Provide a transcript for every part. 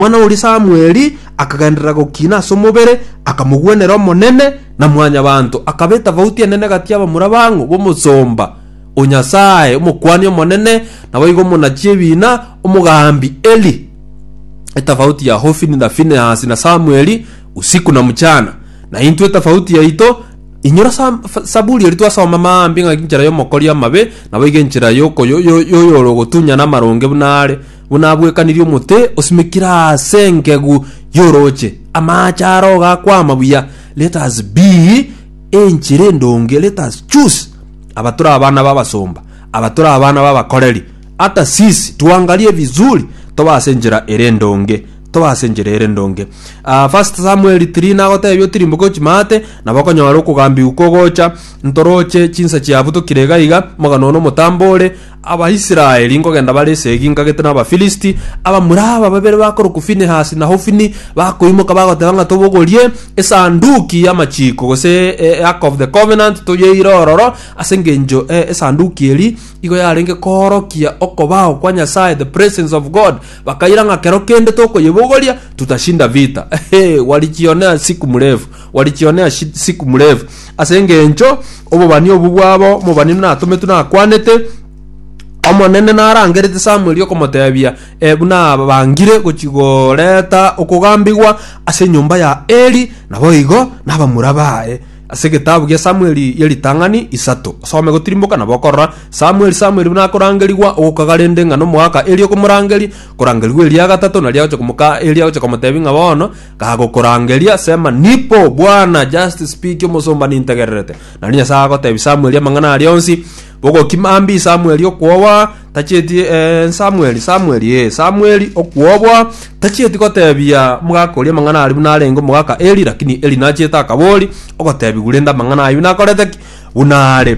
Omwana oria Samweli akagenderera gokina ase omobere, akamogwenera Omonene na mwanyabanto, akaba etafauti enene gati y'abamura bang'u b'omosomba o Nyasae, omokuani omonene, naboigo omonachi ebiina, omogambi Eli, etafauti ya Hofini na Finehasi na Samweli, usiku na mchana. Na intwe etafauti yaito, inyora Sam- F- Saburi eri twasoma maambia ng'aki enchera y'omokori amabe, naboigo enchera y'oko- yo- yo- y'oyore ogotunyana amaronge buna are, Buna abwekanirie omote osimekire aase engegu y'orooche, amaache aro gakwama buya. Let us be enchera endonge, let us choose abatore abana b'abasomba, abatore abana b'abakoreri. Hata sisi tuangarie vizuri tobe ase enchera ere endonge, tobe ase enchera ere endonge. Ah, First Samuel 3 nagotebia otirimboke ochimate, nabo okonyora okogambigwa kogocha, ntoroche chinsa chiabu tokire iga iga, mogano one omotambo ore, Abaisraeli nkogenda bare esegi nkagete n'Abafilisti, abamura aba babere bakorokwa Finehasi na Hofini bakoimoka bagoteba ng'a tobogorie Esanduki y'Amachiko, gose e, Ark of the Covenant, toyeire ororo, ase engencho e, Esanduki eri igo yarenge koorokia okobao kwa Nyasae, the presence of God. Bakaira ng'a kero kende tokoyebogoria tutashinda vita. Ehe, warichione siku mrefu. Walikione ashi siku mrefu, ase engencho obobani obwo bwabo mobani natometwe nakwanete, Omonene narangerete Samweli okomotebia, Ebu nabangire gochi goreta okogambigwa ase enyomba ya Eli, naboigo nabamura baye. Ase egetabu gia Samweli gia ritang'ani isato, osome gotirimboka nabo okorora Samweli Samweli buna akorangerigwa ogokaga rende ng'a nomoaka Eli okomorangeri, korangerigwa eria gatato naria agocha komoka Eli agocha komotebia ng'a bono Gagokorangeria, sema, Nipo, Bwana, just speak, omosomba nintegererete. Naende Nyasae agotebia Samueli amang'ana aria onsi, bogokima mbi Samueli okwowa, tachieti eh, Samueli, Samueli, eh, Samueli okwowa, tachieti gotebia omogaka oria amang'ana aria buna arenge omogaka Eli, lakini Eli nachiete akabori, ogotebiwa rende amang'ana ayio nakorete ki? Buna are.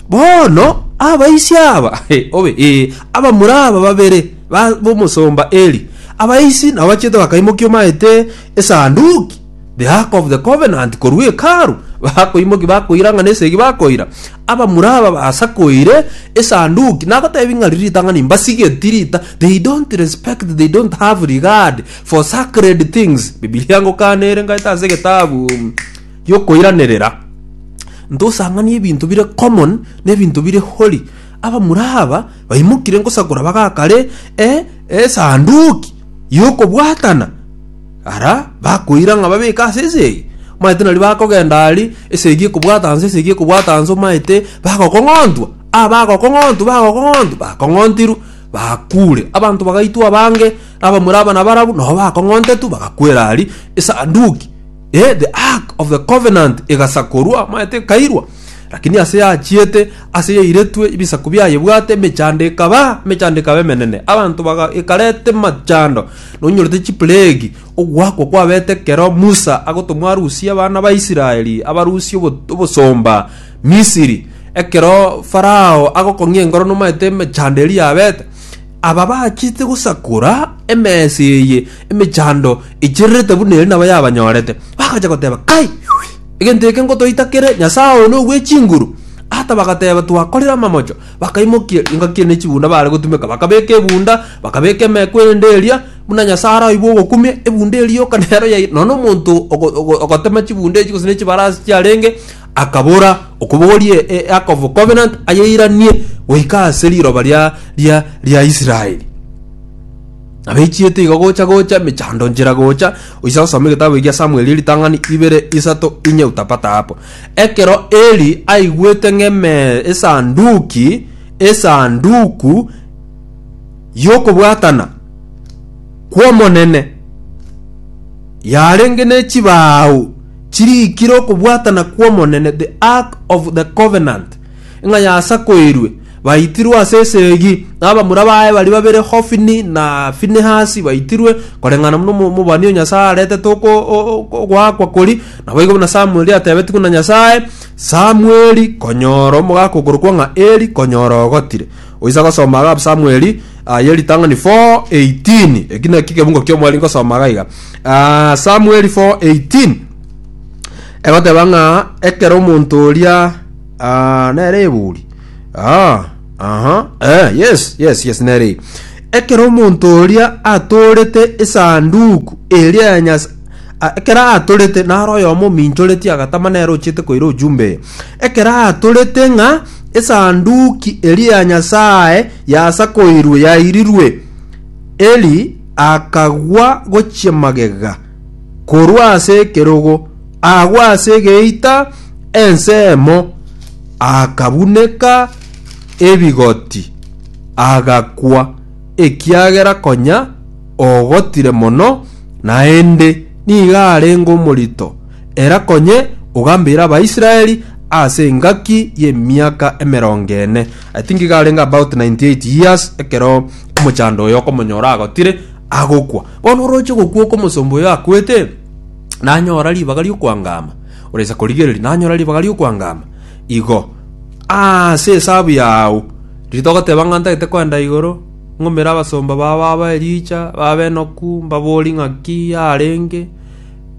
Bono abaisia aba obe ee, abamura aba babere ba b'omosomba Eli, abaisi nabo bachete bakaimokia omaete esanduki, the ark of the covenant, korwa Hekalu, bakoimokia bakoira ng'a nesegi bakoira. Abamura aba basakoire esanduki, nagotebi ng'a riri ritang'ani mbasigeti rita, they don't respect, they don't have regard for sacred things. Bibilia ngokana ere ngaete ase egetabu y'okoiranerera, ntosang'anie ebinto bire common na ebinto bire holy. Abamura aba baimokire ngosakora bagakare e esanduki y'okobwatana ara bakoira ng'a babeke ase esegi omanyete nari bakogenda ari esegi ekobwata nse esegi ekobwata nse omanyete bagokong'ontwa ah bagokong'ontwa bagokong'ontwa bakong'ontirwe bakure abanto bagaitwa abange abamura aba nabarabu nabo bakong'ontetwe bagakwera ari esanduki Eh, the ark of the covenant egasakorwa, amaete ekairwa, lakini ase yachiete, ase yairetwe, ebisaku biaye bwate, emechando ekaba, emechando ekaba emenene, abanto baga ekarete machando, nonyorete chiplegi, ogwakwa kwabete kero Musa agotomwa arusie abana ba Israeli, abarusie obo- obosomba Misiri, ekero Farao agokong'ia engoro nomaete emechando eria yabete, Aba bachete gosakora emesa eye emechando echererete buna ere nabo yabanyorete, bagacha goteba, Kai! Egento eke ngotoita kere nyasae one ogwe chinguru? Ata bagateba, Twakorire amamocho. Bakaimokia engaki eye ne chibunda baare gotumeka, bakabeka ebunda, bakabeka emeku erinde eria, buna Nyasae araigwe ogokumia, ebunda eria yoka nero yaira. Nonya omonto ogo- ogo- ogotema chibunda echi gose ne chibarasi chiarenge Akabora, Okobogorie e Ark of Covenant ayeiranie goika ase riroba ria ria ria Israeli. Abeichiete igo gocha gocha mechando nchera gocha oisa gosoma egetabu egia Samueli ritang'ani ibere isato inye utapata hapo. Ekero Eli aigwete ng'eme esanduki esanduku y'okobwatana kw'Omonene yarenge ne chibao Chiriikire okobwatana kw'Omonene, the ark of the covenant, ng'a yasakoirwe, baitirwe ase esegi, na abamura baye baria babere Hofini na Finehasi baitirwe, koreng'ana buna omo- omobani o Nyasae aretete oko- o- o- ogoakwa kori, naboigo buna Samueli atebetigwe na Nyasae, Samueli, konyora omogaka okorokwa ng'a Eli, konyora ogotire. Oisa gosoma iga Samueli ah, ye ritang'ani 4:18 eki naki egebungo ki'omweri ngosoma iga iga Ah, Samueli 4:18 egoteba ng'a ekero omonto oria ah, nere eburi ah, aha eh, yes yes yes nere eye. ekero omonto oria atorete esanduku eria ya Nyas- a- ekero atorete naro oyomo ominchoretie agatama nere ochete koira ojumbe eye Ekero aatorete ng'a Esanduki eria ya Nyasae yasakoirwe yairirwe, Eli akagwa gochia magega korwa ase ekerogo, agwa ase egeita ensemo, akabuneka ebigoti, agakwa, ekiagera konya ogotire mono, naende nigo arenge omorito. Era konye ogambeire Abaisraeli ase engaki y'emiaka emerongo ene, I think iga arenge about 98 years, ekero omochando oyo okomonyora agotire agokwa. Bono oroche gokwa okomosomba oyo akwete, nanyora ribaga ri'okwangama, oresa korigereria, nanyora ribaga ri'okwangama, igo ase esabu yao, riria togoteba ng'a ntagete koenda igoro, ng'umere abasomba bao babae richa, babe enoku, mbabori ng'aki yarenge.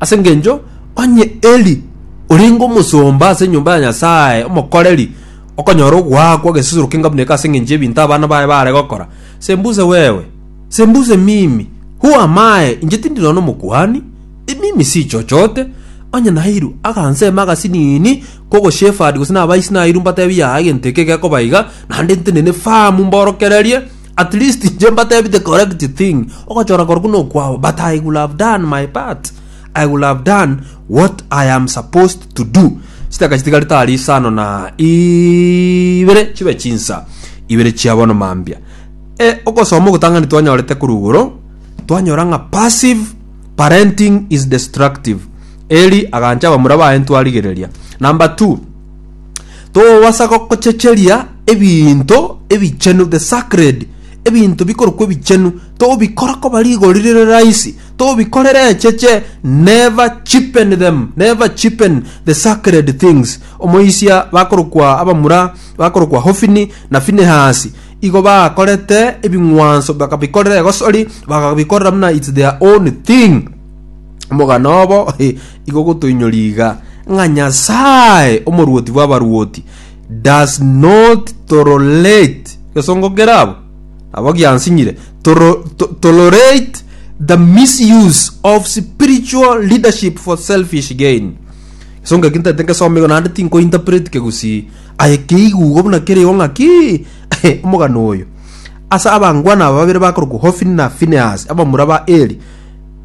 Ase engencho onye Eli orenge omosomba ase enyomba ya Nyasae, omokoreri, okonyora ogoakwa egesusuro keng'a buna eke ase engencho y'ebinto abana baye baare gokora. Sembuse wewe! Sembuse mimi! Who am I? Inche tindi nonya omokuhani. I mimi si chochote. Onye nairu agansema agasinini k'ogosheferd gose nabaisi nairu mbatebi yaya egento eke gekoba iga, naende ntenene famu mborokererie, At least inche mbatebi the correct thing ogochora korokwo nokwao but I will have done my part I will have done what I am supposed to do chitaka chitigari tari isano na ibere chibe chinsa ibere chia bono mambia e ogosoma ogotang'ani twanyorete korugoro twanyora ng'a passive parenting is destructive Eli agancha abamura baye ntwarigereria number two Togobasa gochecheria ebinto ebichenu, the sacred, ebinto bikorokwa ebichenu, togobikora koba rigori rire raisi, togobikorera echeche, never cheapen them, never cheapen the sacred things. Omoisia bakorokwa abamura bakorokwa Hofini na Finehasi, igo bakorete ebing'wanso bakabikorera egosori, bakabikorera buna it's their own thing. Omogano obo Igo gotoinyori iga, ng'a Nyasae, omoruoti bw'abaruoti, does not tolerate, gesongo kerabo, nabo giansinyire, toro- to- tolerate the misuse of spiritual leadership for selfish gain. Gesongo eki ntaete ngesoma igo naende tinkointerpret kegusii. Aye keigu igo buna kerigo ng'a ki? Omogano oyo. Ase abangwana aba babere bakorokwa Hofini na Finehasi, abamura ba Eli,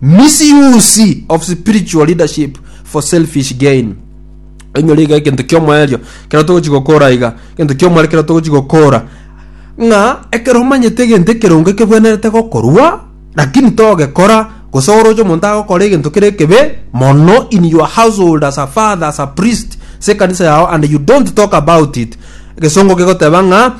Misuse of spiritual leadership for selfish gain. Enyore iga ekintu kiomoerio kero togochi gokora iga ekintu kiomware kero togochi gokora ng'a ekero omanyete egento ekerongo ekebwenerete gokorwa lakini togekora gose oroche omonto agokora egento kere ekebe mono in your household as a father as a priest se ekanisa yao and you don't talk about it egesongo gegoteba ng'a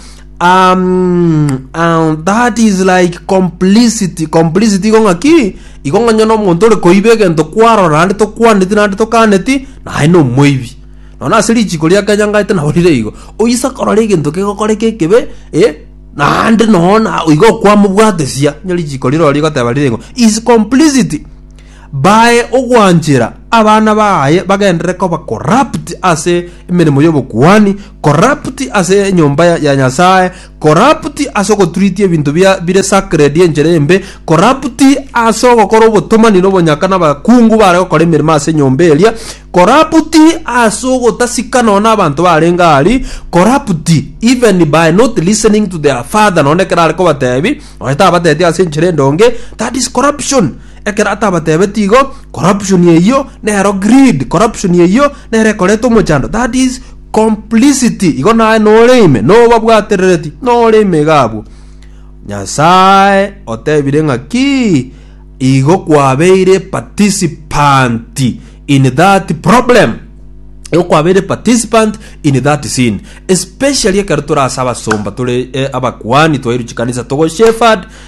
Um, um, that is like complicity complicity igo ng'aki igo ng'onye na omonto ore koiba egento kwarora naende tokwaneti naende tokaneti naye na omoibi nona ase richiko ria kenya ng'aete naborire igo oise korora egento kegokoreka ekebe eh, naende nona igo okwamobwatesia onye richiko rire oro rigoteba rire igo is complicity bae ogwanchera abana baye bagenderere koba corrupt ase emeremo y'obokuani, corrupt ase enyomba ya, ya Nyasae, corrupt ase ogotreat ebinto bia bire sacred enchera embe, corrupt ase ogokora obotomani nobonyaka nabakungu bare gokora emeremo ase enyomba eria, corrupt ase ogotasika nonya na abanto barenge ari, corrupt even by not listening to their father nonya ekero are kobatebi, nonya tabateti ase enchera endonge, that is corruption. Ekero atabatebetie igo, corruption eyio nero greed, corruption eyio nero ekoreta omochando, that is complicity. Igo naye nore ime, nobabwaterereti, nore ime iga abwo. Nyasae otebire ng'a ki? Igo kwabeire participant in that problem. Igo kwabeire participant in that sin. Especially ekero tore ase abasomba, tore eh, abakuani, twairu chikanisa togo shepherd,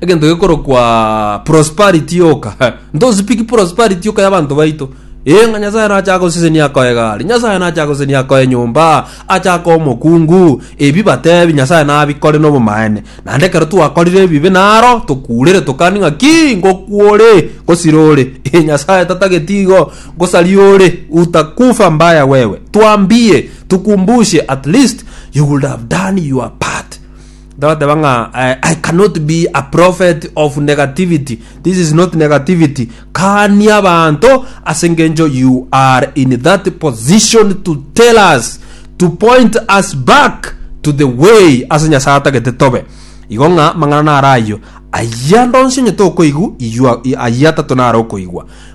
egento gekorokwa prosperity yoka ntosipiki prosperity yoka y'abanto baito ee ng'a nyasaye nache agosesenia akoe gari nyasaye nache agosesenia akoe nyomba ache akoe omokungu ebi batebi nyasaye nabikore nobomaene naende ekero twakorire ebibe naro tokurere tokani ng'a ki ngokwore ngosira ore ee nyasaye tatageti igo ngosaria ore utakufa mbaya wewe twambie tukumbushe at least you would have done your part Togoteba ng'a I cannot be a prophet of negativity. This is not negativity. Kania abanto ase ngencho you are in that position to tell us to point us back to the way ase Nyasaye atagete tobe. Igo ng'a mang'ana nara ayio. Ayia ndonsi onye tokoigu iyua ayia tato nara okoigwa.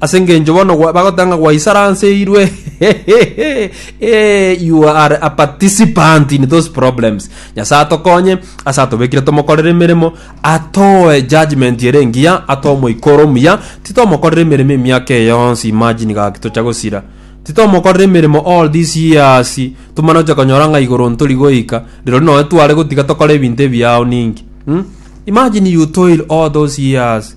Ase engencho bono gwa- bagoteba ng'a gwaisaranseiirwe, eh, you are a participant in those problems. Nyasae atokonye, ase atobekire tomokorere emeremo, atoe judgment ere engiya, atoe omoika ore omuya, titomokorera emeremo emiaka eye yonsi, imagine gaki tocha gosira. Titomokorera emeremo all these years, tomana gocha konyora ng'a igoro ntori goika, rirorio nonye tware gotiga tokore ebinto ebiao ninki. Hm? Imagine you toil all those years,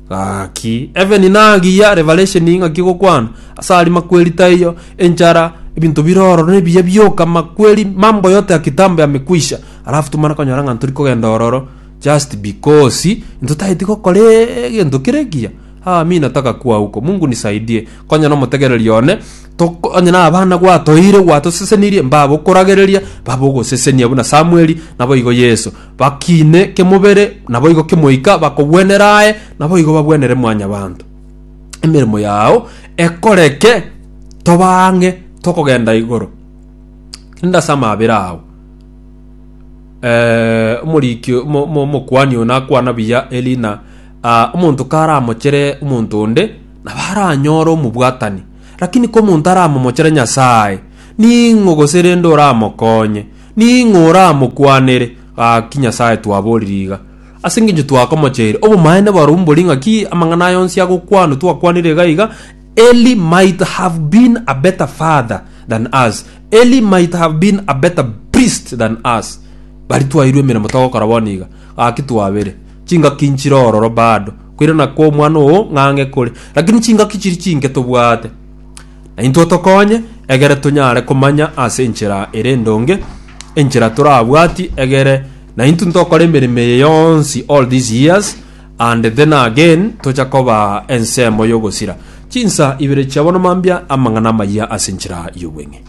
Gaki, Heaven nagiya, Revelation ing'aki gokwana, ase aria makweri taiyo, enchara, ebinto bire ororo nebiya bioka, makweri mambo yote ya kitambo yamekwisha, alafu tomana konyora ng'a ntori kogenda ororo, just because intwe tageti gokora egento kere ekiya. Haa mi nataka kuwa huko, Mungu nisaidie, konya na omotegereri one, tok onye na abana gwatoeire gwatosesenirie, mbabe okoragereria, mbabe ogosesenia buna Samueli, naboigo Yeso, Bakiine kemobere, naboigo kemoika, bakogwenera aye, naboigo bagwenere Mwanyabaanto. Emeremo yao ekoreke tobaa ang'e tokogenda igoro. Rinde ase amabera ao, eh, omoriki omo- omo- omokuani oyo nakwana buya erina ah, omonto karamochere omonto onde nabo aranyore omobwatani lakini komonto aramomochere nyasaye ning'o gose rende oramokonye Ning'o oramokwanere? Gaki Nyasae twaborire iga, ase engencho twakomocheire. Obomaene boro mbori ng'aki amang'ana aya onsi agokwanwa twakwanire iga iga, Eli might have been a better father than us, Eli might have been a better priest than us. Bari twairwe emeremo togokora bono iga, gaki twabere. Chingaki nchire ororo bado, koirana kw'omwana oo ng'ang'e kore, lakini chingaki chiri chinke tobwate. Na intwe otokonye, egere tonyare komanya ase enchera ere endonge, enchera torabwati, egere naintwe ntokore emeremo eye yonsi all these years, and then again tocha koba ensemo y'ogosira. Chinsa ibere chia bono mambia amang'ana amayia ase enchera y'obweng'e.